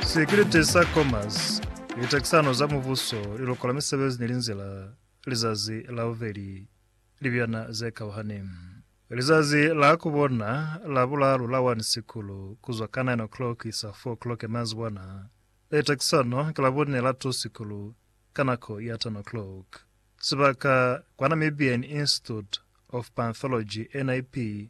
Sikiliti sa Commerce, Litakisano za Mubuso, Liluko la Misebezi ni Linzila, Lizazi la Bubeli, Libyana ze Kauhani. Lizazi la ku bona la bulalu la 1 Sikulu, ku zwa ka 9 o'clock isa 4 o'clock mazibwana. Litakisano ki la bune la 2 Sikulu, ka nako ya 10 o'clock. Sibaka, kwa Namibian Institute of Panthology, NIP,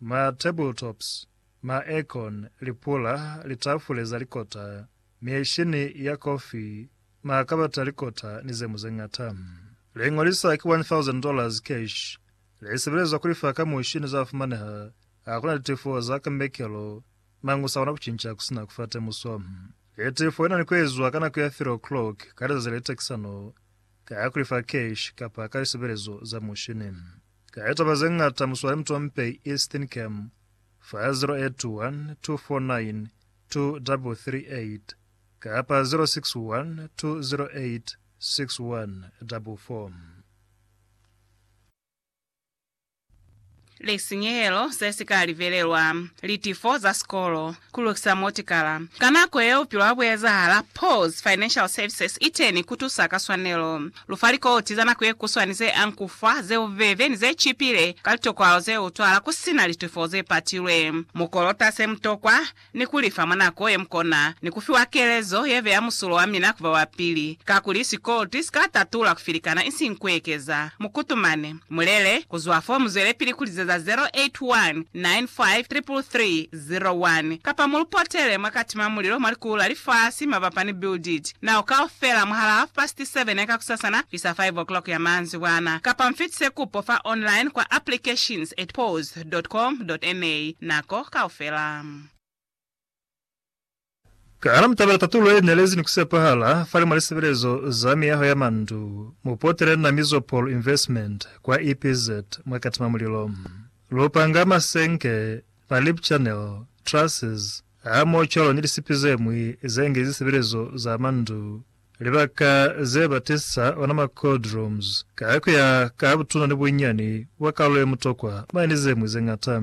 Ma tabletops, ma aircon, lipula, litafule za likota, mieshini ya kofi, ma kabata a likota ni zemu zeñata. Liño li sa ki $1,000 cash li sebelezwa kulifa ka mushi ni za fumaneha ha kuna litifo za kambekelo mañi u sa kona kucinca kusina kufa temuso. Litifo li na ni kuezwa ka nako ya 3 o'clock ka lizazi le takisano ka kulifa cash kapa ka lisebelezo za mushini. Ka litaba ze ñata muswale mutompe Eastern Cam fa 081 249 2338 kapa 061 208 6144. lisinyehelo se si ka livelelwa, litifo za sikolo, ku lukisa motikala. Ka nako yeo bupilo ha bu ezahala, PAWS Financial Services i teni ku tusa ka swanelo. Lu fa likoti za nako ye kuswani ze ankufa, ze bubebe, ni ze cipile ka litokwalo ze utwala ku si na litufo ze patilwe. Mu kolota se mu tokwa, ni ku li fa mwa nako ye mu kona, ni ku fiwa kelezo ye beya musulo wa mina ku ba ba pili. Kakuli sikoloti si ka tatula ku filikana isiñi ku ekeza. Mu kutumane. Mu lele. Ku zwa fo mu zwelepili ku lizeza 0819533333. 01, kapa mu lu potele mwa katima mulilo mwa likulu la lifasi mabapa ni build it now kaufela mwahala half past seven ya kakusasana kuisa five o'clock ya maanzibwana, kapa mfitise kupo fa online kwa applications at pause dot com dot na nako kaufela. Kana mutabela tatulo ye nelezi ni kusepahala fani mwa lisebelezo za miyaho ya mandu? Mupotele na Mizopol Investment kwa EPZ mwa Katima Mulilo. Lupanga, masenke, ma lip channel, trusses, hamoho cwalo ni lisipi zemwi ze nge zisebelezo za mandu, libaka ze ba testisa ona ma cold rooms, ka kuya ka butuna ni bunyani bwa kalulo ye mutokwa, mane ni zemwi zeñata.